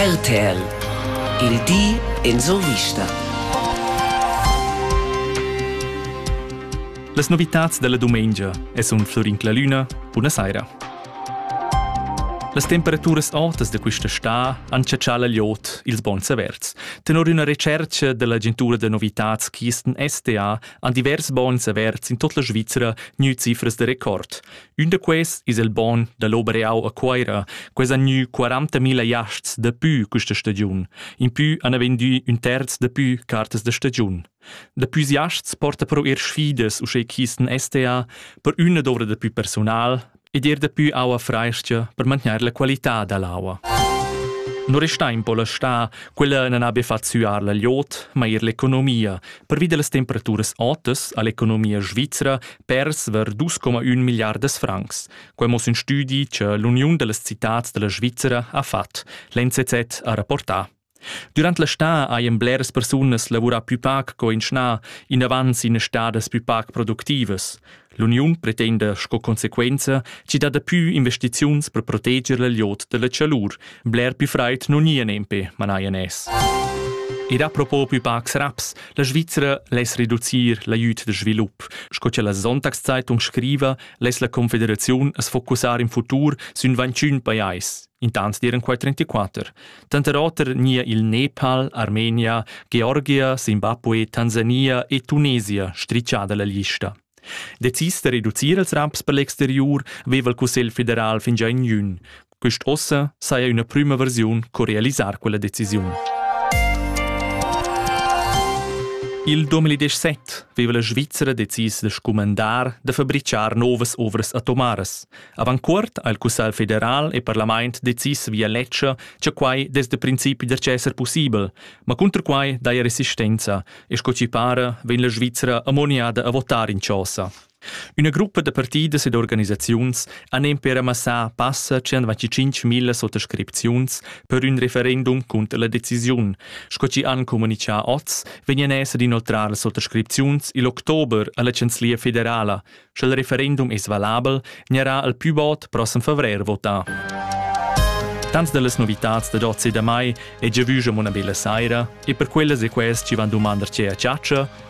RTL Il di en survista. Las novitads della dumengia e sun Florin Clalüna. Buna saira. Las temperaturas autas da questa sta han chatschà la liot ils bons averts. Tenor una recerca dell'agentura da novitats Kisten STA han divers bons averts in tot la Svizzera gnü cifras da record. Ün da quests es il bogn da l'Obereau a Cuoira, quels han gnü 40.000 jasts dapü quista stagiun. Impü han vendü ün terz dapü cartas da stagiun. Dapü jasts porta però eir sfidas uschè chi'stan STA per üna dovrà dapü persunal ed eir dapü aua frais-cha per mantgnair la qualità da l'aua. Non resta in po la sta, quella non abbia fatto suar la liot, ma er l'economia, pervi delle temperature otas all'economia svizzera persver 2,1 milliardas francs. Quai mo in studi che l'Uniun delle Citats della Svizzera ha fatg. L'NCZ ha rapportà. Durant la stà hajan bleras persunas lavurà più pac co in schnà, inavant sin stadas più pac productivas. L'uniun pretenda sco conseguenza ci dat pü investiziuns per proteger la liot della chalur, Bler più fraid non ia nempe, manaia nes. Ed a propo più pacs raps, la Svizzera less reducir l'aiut de svilup, sco che la Sonntagszeitung scriva, less la Confederaziun as focussar in futur sün 21 pajais, intans diren quai 34, tanter oter nia il Nepal, Armenia, Georgia, Zimbabwe, Tansania e Tunesia stricciada la lista. Decis de reducir els raps per l'exterior veva il Cussegl federal fingià in jun, Quest'ossa saja üna prüma versiun co realisar quella decisiun. Il 2017 veva la Svizzera decis da scumandar da fabricar novas ovras atomaras. Avant cuort ha il Cussegl federal e parlament decis via ledscha, che quai des de principi der esser possibel, ma cunter quai daja resistenza e sco ci para vegn la Svizzera ammoniada a votar in chosa. Üna gruppa da partidas ed organisaziuns han nempe ramassà passa 125 milla sottoscripziuns per ün referendum cunter la decisiun. Sco chi han comunichà oz, vegnan esser inoltrar las sottoscripziuns il october alla Chanzlia federala. Sche il referendum es valabel, gnarà al pü bod prossem favrer votà. Tanto delle novità da oggi da mai è già vusa una bella sera e per quelle se quest ci van domandarci a ciaccia